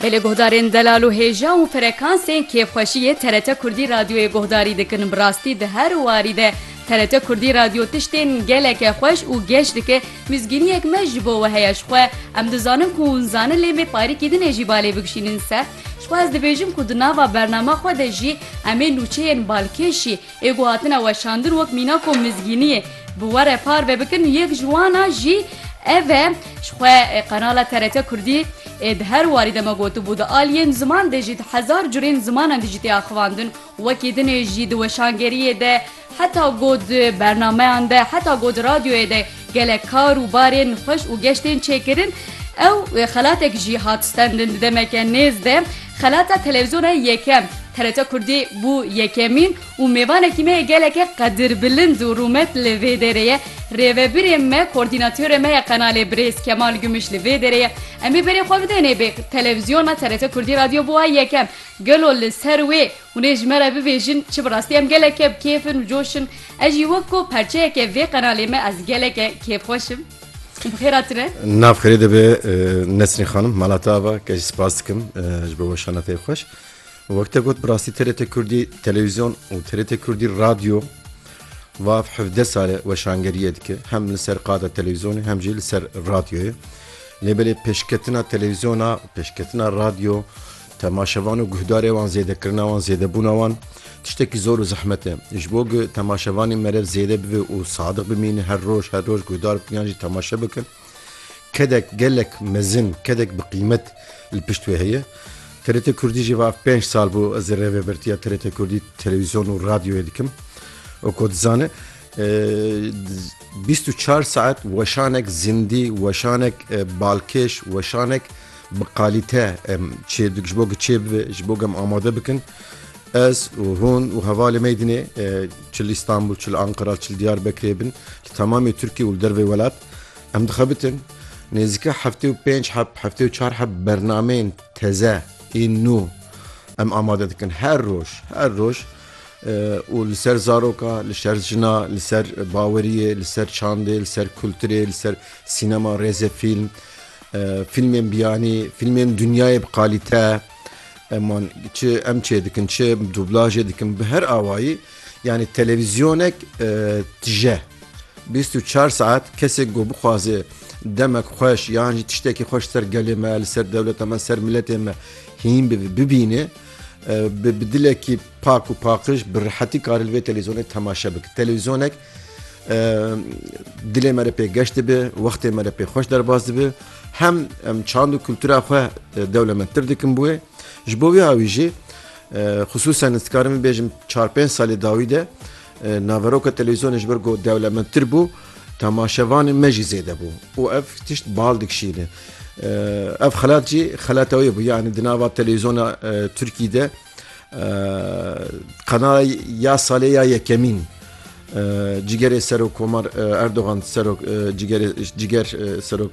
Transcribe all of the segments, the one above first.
Bi lê guhdarên Delal û Hêja û frekansên kêfxweşiyê TRT Kurdî Radyoyê guhdarî dikin. Bi rastî di her warî de TRT Kurdî Radyo tiştên geleke xweş û geş dike. Mizgîniyek me ji bo we heye ji xwe. Em dizanin ku hûn zanin lê me parîkî din ê jî balê bikişînin ser. Ji xwe ez dibêjim ku di nava bernama xwe de jî em ê nûçeyên balkêşî, Ê ku hatine weşandin wek mîna ku mizgîniyê bi we re par ve bikin, yek ji wana jî ev e. Ji xwe qenala TRT Kurdî ê di her warî de me gotibû, di aliyên ziman de jî di hezar curên zimanan de jî tê axivandin. Wekî dinê jî di weşangeriyê de, heta got di bernameyan de, heta got di radyoyê de, Gelek kar û barên xweş û geş tên çêkirin. Ew xelatek jî hat stendin di demeke nêz de. Xelata televîzyona yekem, TRT Kurdî, bû yekemîn û mêvanekî me yê geleke qedirbilind û rûmet li vê derê ye. Rêvebirê me, kordînatörê me ye qenalê birêz Kemal Gümüş li vê derê ye. Em ê berê xwe bidênê bê televîzyona TRT Kurdî radyo bûa yekem. Gelo li ser wê Hûn ê ji me re bibêjin çi bi rastî em geleke bi kêf in û coş in. Ez jî wek ku perçeyeke vê qenalê me ez geleke kêfxweş im. Bi xêra tune. Navxêrê dibe Nesrîn Xanim mala te ava ke jî spas dikim ji bo weşana te xweş. Wek te got bi rastî TRT Kurdî televîzyon û TRT Kurdî radyo vav hevdeh sal e weşangeriyê dike hem li ser qada televîzyonê hem jî li ser radyoyê. Lê belê pêşketina televîzyona, pêşketina radyo, Temaşevan û guhdarê wan zêdekirina wan zêdebûna wan tiştekî zor û zehmet e. Ji bo ku temaşevanên merev zêde bibe û sadiq bimînin her roj her roj guhdar bikin yan jî temaşe bikin kedek gelek mezin kedek bi qîmet li pişt wê heye. TRT Kurdî jî va ev pênc sal bû ez rêvebirtiya TRT Kurdî televîzyon û radyoyê dikim û ku dizane bîst û çar saet weşanek zindî weşanek balkêş weşanek Bi qalîte em çê ji bo ku çê bibe ji bo ku em amade bikin ez û hûn û hevalê meydinê çi li Stenbul çi li Anqira çi li Diyarbekirê bin li temamê Tirkiye û li dervê welat em dixebitin nêzîka heftê û pênc heb heftê û çar heb bernameyên teze ên nû em amade dikin her roj her roj û li ser zaroka li şer jina li ser baweriyê li ser çandê li ser kulturê li ser sînema rêzê fîlm Fîlmên biyanî, fîlmên dinyayê bi qalîte eman çi em çê dikin çi dublajê dikin bi her awayî yanî televîzyonek tije bîst û çar saet kesek got bixwaze demek xweş yan jî tiştekî xweş ser gelê me li ser dewleta me ser miletê me hîn bibe bibîne bi dilekî pak û paqiş bi rehetî karê li vê televîzyonê temaşe bike televîzyonek Dilê me re pê geş dibe, wextê me re pê xweş derbas dibe. Hem em çand û kultura xwe dewlemendtir dikin bi wê. Ji bo wê awî jî xisûsen ez dikarim bibêjim çar pênc salê dawî de naveroka televîzyonê ji ber ku dewlemendtir bû temaşevanê me jî zêde bû û ev tişt bal dikişîne. Ev xelat jî xelata wê bû yanî di nava televîzyona Tirkî de Qana ya salê ya yekemîn cigerê Serok Komar Erdogan Serok ciger Serok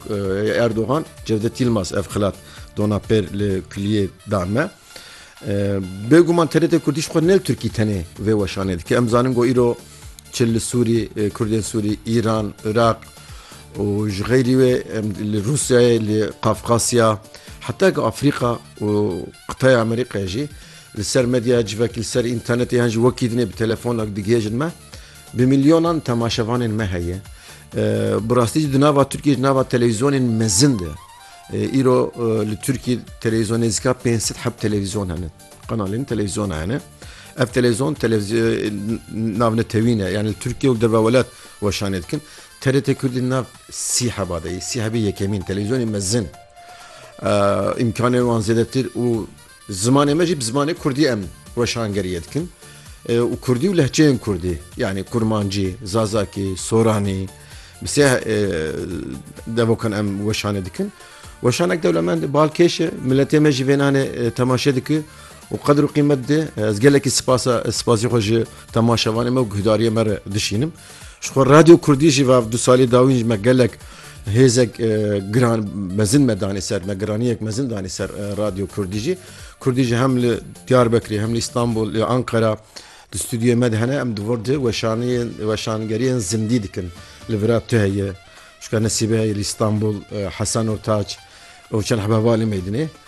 Erdogan Cevdet Yilmaz ev xilat dona pêr li kuliyê dan me. Bêguman TRT Kurdî xwe ne Tirkî tenê vê weşanê dike. Em zanin got îro Çi li Sûrî, Kurdên Sûrî, Îran, Iraq û ji xeyrî wê em li Rûsyayê, li Qafqasya heta ku Afrîqa û qitaya Amerîqayê jî li ser medya civakî li ser înternetê yan jî wekî dinê bi telefonak digihêjin me. Bi milyonan temaşevanên me heye. Bi rastî jî di nava Tirkiyê ji nava televîzyonên mezin de îro li Tirkiyê televîzyon nêzîka pênc sed heb televîzyon hene. Kanalên televîzyona hene. Ev televîzyon navnetewîne yani li Tirkiye û derve welat weşanê dikin. TRT Kurdî nav sî heba de sî hebê yekemîn televîzyonê mezin îmkanê wan zêdetir û zimanê me jî bi zimanê Kurdî em weşangeriye dikin û Kurdî û lehçeyên Kurdî yani Kurmancî, Zazakî, Soranî bi sê devokan em weşanê dikin. Weşanek dewlemend e, bal kêş e, miletê me jî vê nanê temaşe dike û qedir û qîmet dide. Ez gelekî sipasa sipasî xwe ji temaşevanê me û guhdariyê me re dişînim. Ji xwe Radyo Kurdî jî va du salî dawîn ji me gelek hêzek giran mezin me danî ser me giraniyek mezin danî ser Radyo Kurdî jî. Kurdî jî hem li Diyarbekirê hem li Îstanbul li Ankara di stûdyoyê me de hene em di vir di weşaniyên weşangeriyên zindî dikin li vira tu heye Şka nesîbê li Îstanbul, Hesen û Tac û çend hebe va li Mêrdînê.